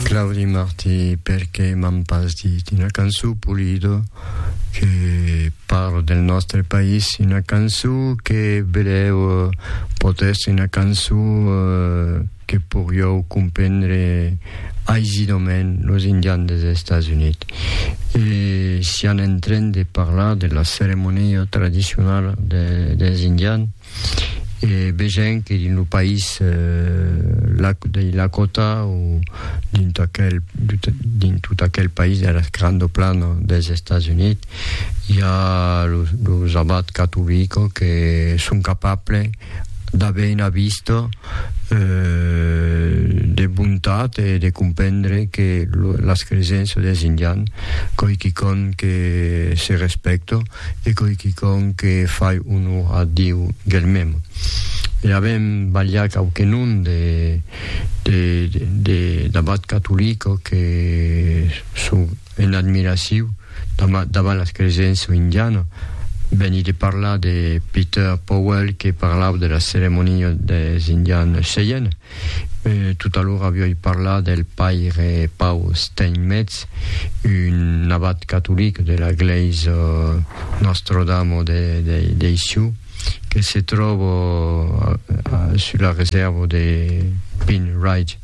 Claudi Martí, perqué m'an pas dit una cançon Pulido que parle del nòstre país, una cançon que vedèu pòt èstre una cançon que poriòu comprendre aisidament los indians des Estats Units. E sián en tren de parlar de la ceremonia tradicionala des indians, e vegèm que dins lo país dins la còta o dins tot aquel, dins tot aquel país de las grando plano dels Estats Units i a los, los abats catovico que son capable d'aver una vista eh, de bontat e de comprendre que las cresenças dels indians coi quicòm que se respecta E coi quicòm que fai onor a Diu germem. E avem balhat quauquenon de d'abat catolico que son en admiraciu davant las cresença indiana. Veni de parlar de Peter Powell que parlàu de las ceremonias des Indians Cheyenne. Tot alora viòi parlar del paire Paul Steinmetz, un abat catolic de la glèisa Nostro-Damo dei Sioux que se tròba sus la resèrva de Pine Ridge.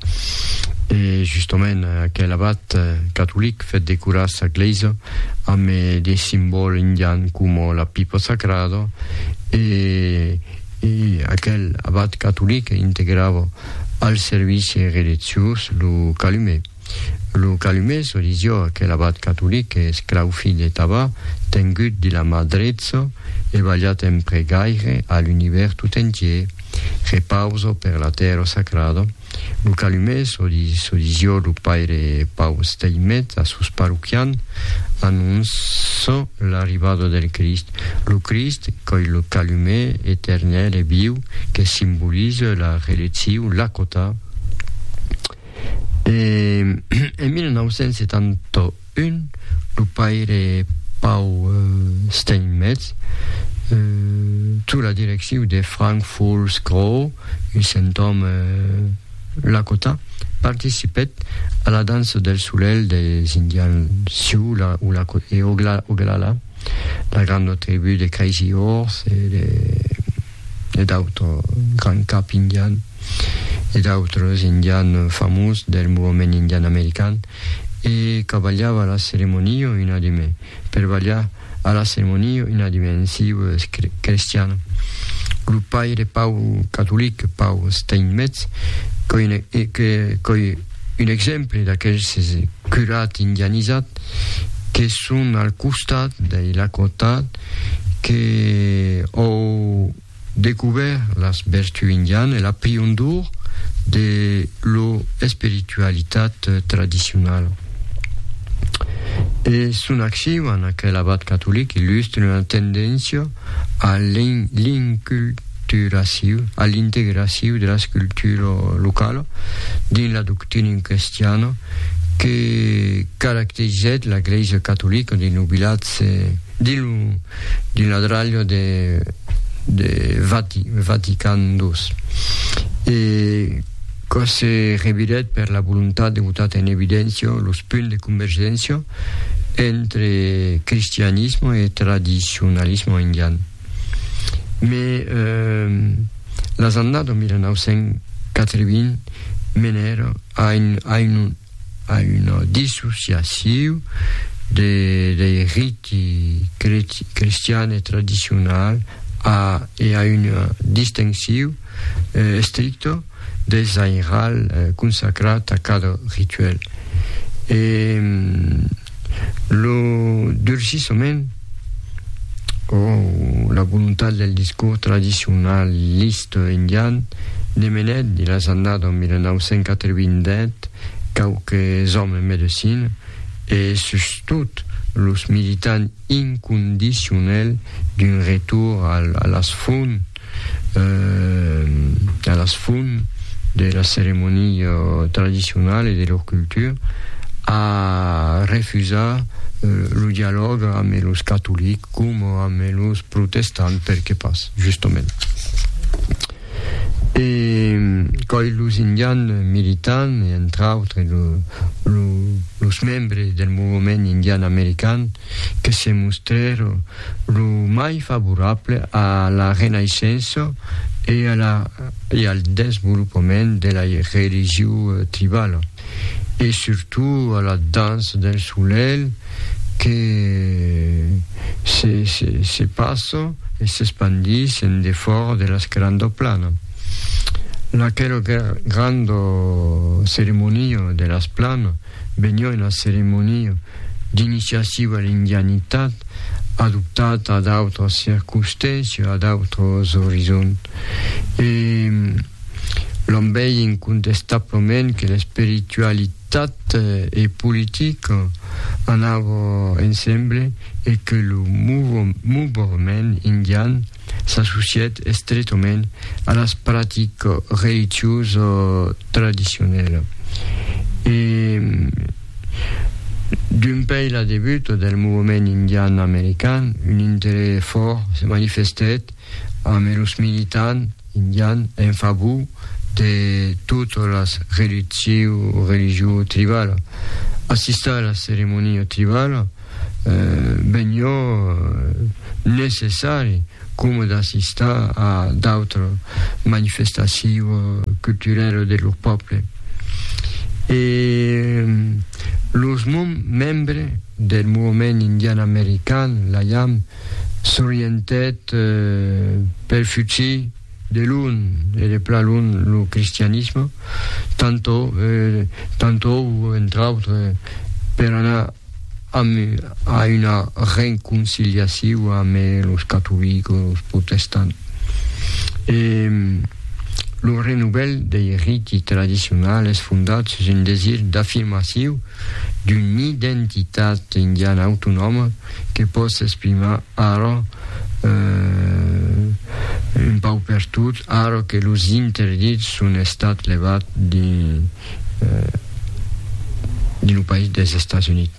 E justament aquel abat catolic fèt decorar sa glèisa amb de simbòls indians coma la pipa sacrada e E aquel abat catolic integrava al servici relitziós lo calume. Lo calume, çò disió aquel abat catolic e esclau filh de Taba, tengut de la mà drecha e balhat en pregaire a l'univèrs tot entier, Repausa per la tèrra sacrada, Lo calume, çò dis jo, lo paire Pau Steinmetz a sos parroquians, anonça l'arribada del Crist. Lo Crist, qu'ei lo calume eternèl e viu que simboliza la releccion, la cota. En 1978, Un, lo paire Pau Steinmetz, sus la direcciu de Frank Fools Crow, un centòme lakota, participèt a la dança del solelh dels Indians Sioux e Oglala, la granda tribú de Crazy Horse e d'autres, Grand Cap Indian, e d'autres Indians famós del movement indian american. e qu'abalhava la ceremonio inadime per balhar a la ceremonio inadime en siu crestian. Lo paire Pau catolic Pau Steinmetz qu'ei un exemple d'aqueles curats indianizats que son al costat dei Lakota que òu Decouvert las vertú indian e la priondor de lo espiritualitat tradicional. E son acciu en aquel abat catolic illustre una tendéncia a l'inculturaciu, a l'integraciu de las cultura locala dins la doctrina crestiana que caracterizèt la Glèisa catolica dins lo vilatge, dins lo d'un adralho de de Vati, Vatican ii, e quò se revirèt per la volontat de botar en evidéncia los punts de convergéncia entre cristianisme e tradicionalisme indian. Me las annadas 1980 menèra a un A una dissociaciu de dei riti cristian e tradicional a e a una distenciu estricto dei zainral consacrat a cada rituel. E lo durcissament o la volontat del discors tradicionalista indian ne menèt de las annadas 1987 quauques òmes en medecina e sustot los militants incondicionèls d'un retorn a las fonts a las fum de la ceremonia tradicionala e de lor cultura, a refusar lo dialòg amb los catolics coma amb los protestants, perqué pas, justament. E coi los indians militants, e entre autres lo, lo, los membres del movement indian american, que se mostrèron Lo mai favorable a la renaissença e a la e al desvolopament de la religion tribala e surtout a la dança del solelh que se se se passa e s'espandís en defòra de las granda plana. Laquela granda ceremonia de las plana Benlèu la ceremonia d'iniciaciu a l'indianitat, adoptat a d'autras circonstàncias, a d'autres orizonts. E l'òm vei incontestablament que l'espiritualitat e politica anava ensemble e que lo mouvement indian s'associèt estretament a las practicas religiosas tradicionalas e dempuèi la debuta del movement indian american un interès fòrt se manifestèt amb los militants indians en favor de totas las religions tribalas. Assistar a las ceremonias tribalas benlhò necessari coma d'assistar a d'autres manifestacions culturelles de lor pòble. E los membres del movement indian american, la IAM, s'orientèt pel futur de lon e de plan lon lo cristianisme, tantou, entre autres, per anar Amu a una renconciliaciu ame los catolicos, los protestants. E lo renovel dei riti tradicionals es fondat sus un desir d'afirmaciu d'una identitat indiana autonòma que pòt s'exprimar ara un paupertot ara que los interdits son estats levats de Americ dins lo país dels Estats Units.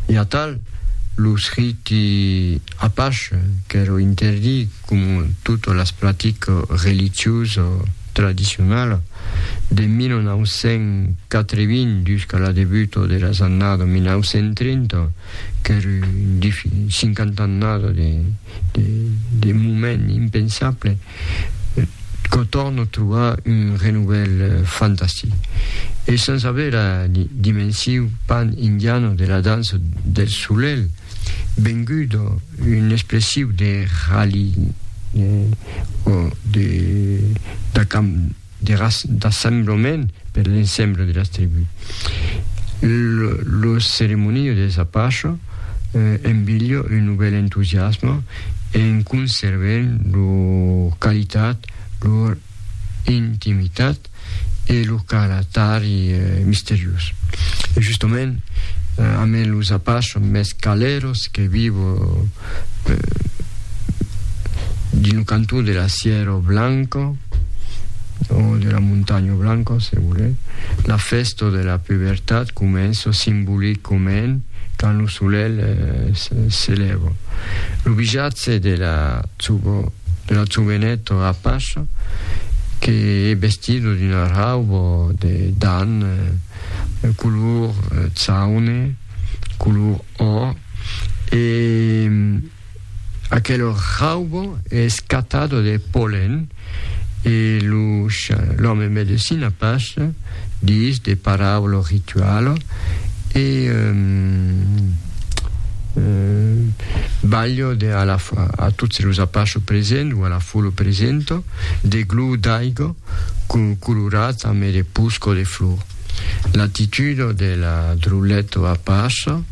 E atal, los riti Apache qu'èro interdit coma totas las practicas religiosas tradicionalas de 1980 jusqu'a la debuta de las annadas 1930, qu'èro un 50 annada de, de, de moment impensable, quò torno trobar un renouvel fantastic e sens aver la dimensiu pan indiano de la dança del solelh vengut un expressiu de ralliement o de Terras d'assemblament per l'ensemble de las tribus. Lo ceremoniu dels Apache embilha un novèl entusiasme en conservent lo qualitat, lo intimitat e lo caratari misteriós. Justament, amèn los Apache mès caleros que viu. dins lo cantó de la Sierra Blanca, o de la Montanha Blanca, se volètz, la fèsta de la pubertat comença simbolicament quand lo solelh se lèva. Lo bijatge de la joveneta apacha que es vestida d'una rauba de dan color chaune, color or, e aquelo raubo es catado de polen, e lo l'òme medecina pas dis de paraulo ritualo, e balho de a la a tots los apacho present, o a la folo presento, de glu d'aigo colorat ame de pusco de flor. L'attitudo de la drulleto a passa,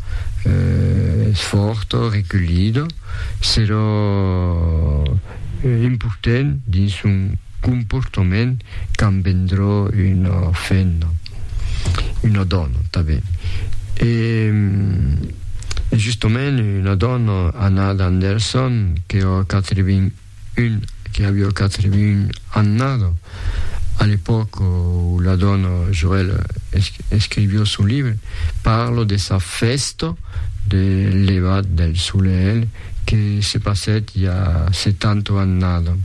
sfòrto, recullido, serò importent dins son comportament quand vendrò una femna, una dòna tanben. E justament una dòna, Anna Anderson, qu'èra 80. Un que avió quatre mun annado, a l'epòca où la dòna Joël escrivió son libre, parlo de sa fèsta de levat del solelh que se passèt i a setanta annado.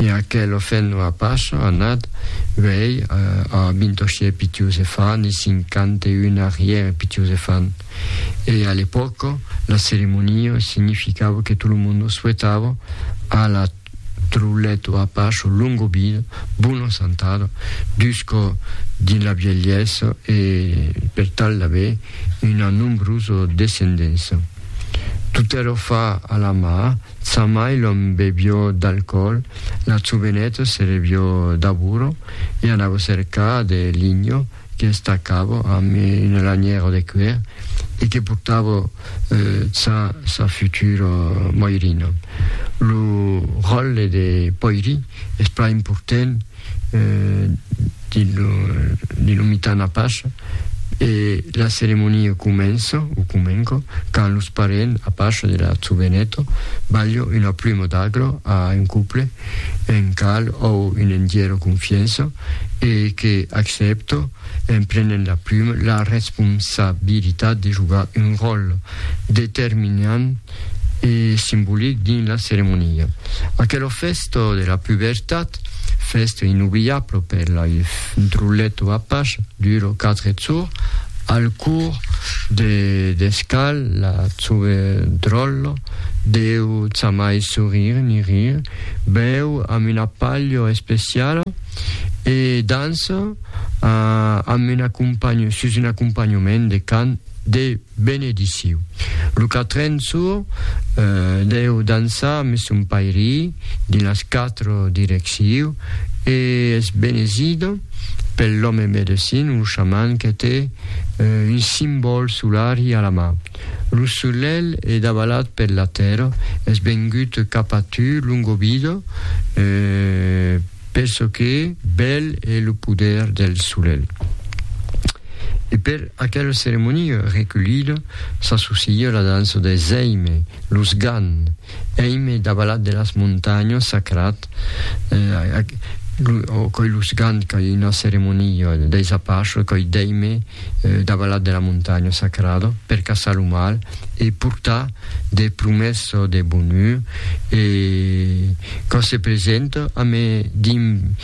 E aquel ofèn a Pacha anat uèi a Bintoshie Pitiuzefan i cinquanta-un arrière Pitiuzefan. E a l'epòca, la ceremonia significava que tot lo monde souetava a la Trulet o a Pacho longa vida, bona santada, jusca dins la vielhesa e per tal d'aver una nombrosa descendença. Tot èra fa a la mà, sa mai l'òme bevió d'alcoòl, la joveneta se revió d'abura e anava cercar de linha, qu'esta cava amb una lanièra de cuèr e que portava ça sa futura moirina. Lo ròtle de poiri es plan important dins lo mitan apache e la ceremonia comença o comenca quand los parents apache de la joveneta balha una pluma d'agla a un couple, un cal o un endièr de confiança, e que accèpto, en prenent la pluma, la responsabilitat de jogar un ròl determinant e simbolic dins la ceremonia. Aquelo fèsto de la pubertat, fèsto inobliable per la Drulletto Apache, dura quatre jours, al cours de descal la Drollo deu jamai sorrire ni rire, Bèu amb una palha especiala e dança amb un acompanho, sus un acompanhament de cant de benediciu. Lo quatren sor deu dançar amb son pairí dins las quatre direcciu e es benezida pel lòme medecin o xaman que te un simbòl solari a la man. Lo solelh e davalat per la tèrra, es vengut cap a tu, Longobido, per çò que bèl e lo poder del solelh. E per aquela ceremonia reculida s'associa la dança de Zeime, los Gan, Èm davalat de las montanhas sacrat, o coi los gant coi una ceremonia deis Apachos, coi d'èime davalat de la montanha sacrada per caçar lo mal e portar de promessa de bonur e quand se presenta a me dim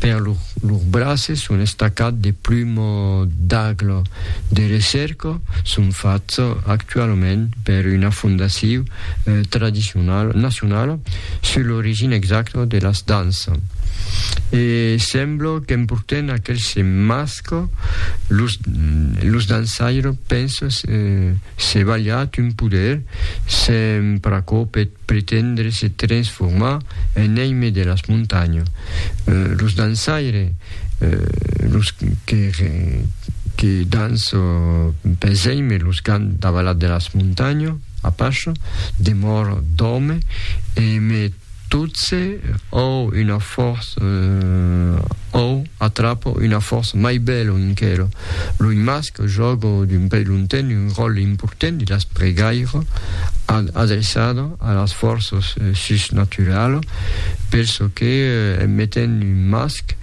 Per lor braces son estacats de plumo d'aglo de recerca son fachs actualament per una fondaciu tradicionala nacionala sus l'origina exacta de las dansa e sembla qu'emporten aquels masca los dansaires pensa se balhat un poder se'n pr'acò peth pretendre se transformar en èime de las montanhas, los dançaires, los que dançan pels èimes, los qu'an davalat de las montanhas, Apache, demor d'òme, e me totse òu una fòrça, òu atrapa una fòrça mai bèla enquera. Lo masc jòga d'un pei lonten un ròtle important de las pregaire an adreçada a las fòrças susnaturalas per çò que en metent un masc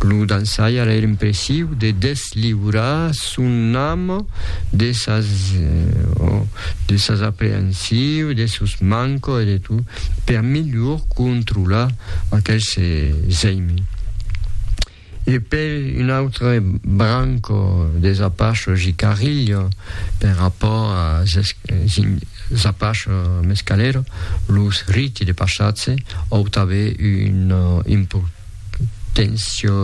lo dançaire èra impressiu de desliurar son ame de sas aprehensius, de sos manques e de tot per melhor controlar aquel se zeime. E per un autre branco des Apachos i Carrillo, per rapòrt als Apachos mescaleros, los riti de passatge òu tanben una importància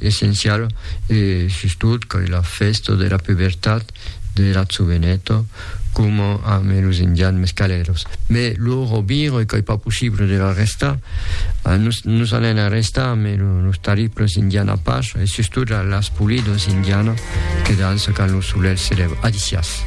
essenciala e sustot que la fèsta de la pubertat de Lazzu Veneto, coma amb los indians mescalèros. Mai lo robiro e qu'ei pas possible de l'arrestar, nos, nos anèn arrestar amb los tariples indians Apache e sustot las Pulidos indianas que dança quand lo solelh se lèva. Adicias.